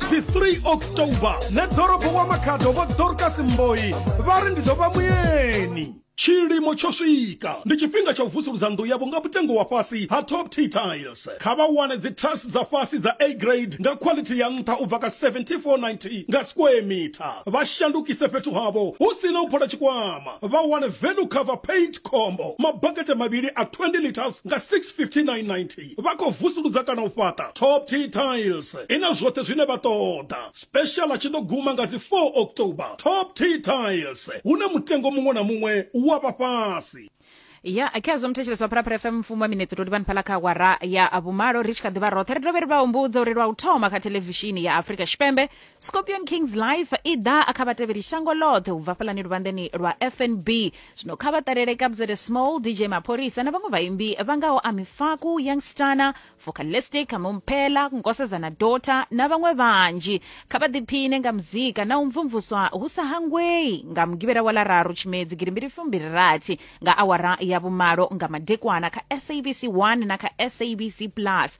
si 3 october na ḓorobo wa makhado vho dorcas mboyi vha ri ndi ḓo vha muyeni tshilimo tsho swika ndi tshifhinga tsha u vusuludza nnḓu yavho nga mutengo wa fhasi ha top t tiles kha vha wane dzi tiles dza fhasi dza a grade nga quality ya nṱha u bva ka 7490 nga square meter vha shandukise fhethu havho hu si na u phola tshikwama vha wane value cover paint combo mabakete mavhili a 20 liters nga 65990 vha khou vusuludza kana u fhaṱa top t tiles i na zwoṱhe zwine vha ṱoḓa special a tshi ḓo guma nga dzi 4 october top t tiles hune mutengo muṅwe na muṅwe wa vha fhasi ya khezwo muthetshelesi wa phalaphala fm mfumo wa minetse to livhani phala kha awara ya vhumalo ri tshi kha ḓivha roṱhe ri dovhe ri vha humbudze uri lwa u thoma kha thelevishini ya afrika tshipembe scorpion kings life i ḓa a kha vhatevheli shango ḽoṱhe u bva fhaḽani luvhanḓeni lwa fnb zwino kha vha ṱalele kabzede small dj mapholisa na vhaṅwe vhaimbi vha ngaho amifaku youngstana focalistic mumphela nkosedzana dota na vhaṅwe vhanzhi kha vha ḓiphine nga muzika na u mvumvuswa hu sa hangwei nga mugivhela wa lararu tshimedzi girimbili fumbili rathi nga awara ya vhumalo nga madekwana kha sabc 1 na kha sabc plus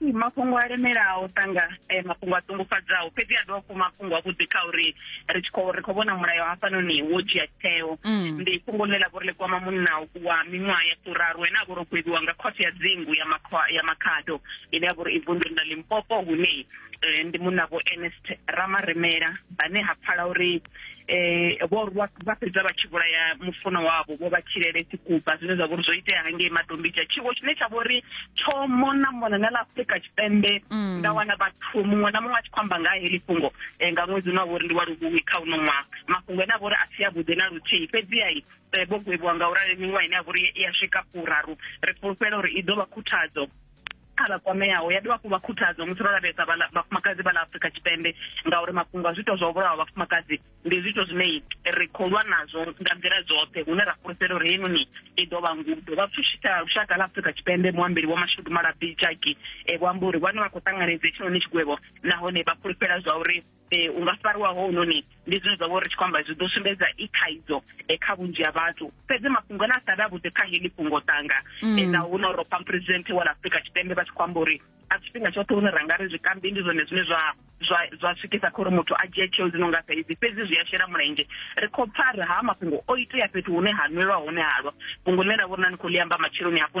mafhungo a lemelaho sanga eh, mafhungo a ṱungufhadzaho fhedzi a dovha mafhungo a vhuḓi kha uri ri tshi khou ri khou vhona mulayo hafhanoni wo dzhia tsheo mm. ndi fhungo ḽe ḽa vho ri ḽi kwama munna wa miṅwaha ya furaru ene a vho ro kweviwa nga khothe ya dzingu ya ya makhado ine ya vho ri i vunḓuni ḽa limpopo hune eh, ndi munna vho ernest ramaremela vhane ha pfala uri eh vho rwa vha fhedza vha tshi vhulaya mufuno wavho vho vha tshilele tshikuba zwine zwa vhori zwo itea hangei matombidzha tshiwo tshine tsha vhori tsho mona mona na ḽa afurika tshipembe mm. nda wana vhathu muṅwe na muṅwe a tshi khou amba nga heḽi fhungo eh, nga ṅwedzi une wa vhori ndi wa luhuhi kha uno ṅwaha mafhungo ane a vhori a si avhuḓi na luthihi fhedziha eh, vho gwevhiwa nga u rali miṅwaha ine ya vhori i ya swika furaru ri fulufhela uri i ḓo vha khuthadzo kha vha kwameaho ya dovha hafhu vha khuthadzo musi ro lavhelesa vhafumakadzi vha ḽa afurika tshipembe ngauri mafhungo a zwiito zwa u vhulawa vhafumakadzi ndi zwiito zwine ri khou lwa nazwo nga nḓila dzoṱhe hune ra fhulufhela uri heinoni i ḓo vha ngudo vha pfushisa lushaka ḽa afurika tshipembe muambeli wa mashudu malabi jaki e vho amba uri vhane vha khou ṱanganedza hetshinoni tshigwevho nahone vha fhulufhela zwa uri um u nga fariwa hounoni ndi zwine zwa vho ri tshi khou amba zwi ḓo sumbedza i thaidzo um kha vhunzhi ha vhathu fhedzi mafhungo ane a sa vhe a vhuḓi kha heḽi fhungo tanga mm. na huno ro pam president wa la afrika tshipembe vha tshi khou amba uri a tshifhinga tshoṱhe hune ra nga ri zwikambi ndi zwone zwine zwa zwa zwa swikisa kha uri muthu a dzhie tsheo dzi no nga saidzi fhedzi zwi a shela mulenzhe ri khou pfa ri ha mafhungo o itea fhethu hune ha nwelwa hone halwa fhungo ḽine ra vho rina ni khou ḽi amba matsheloni hafhu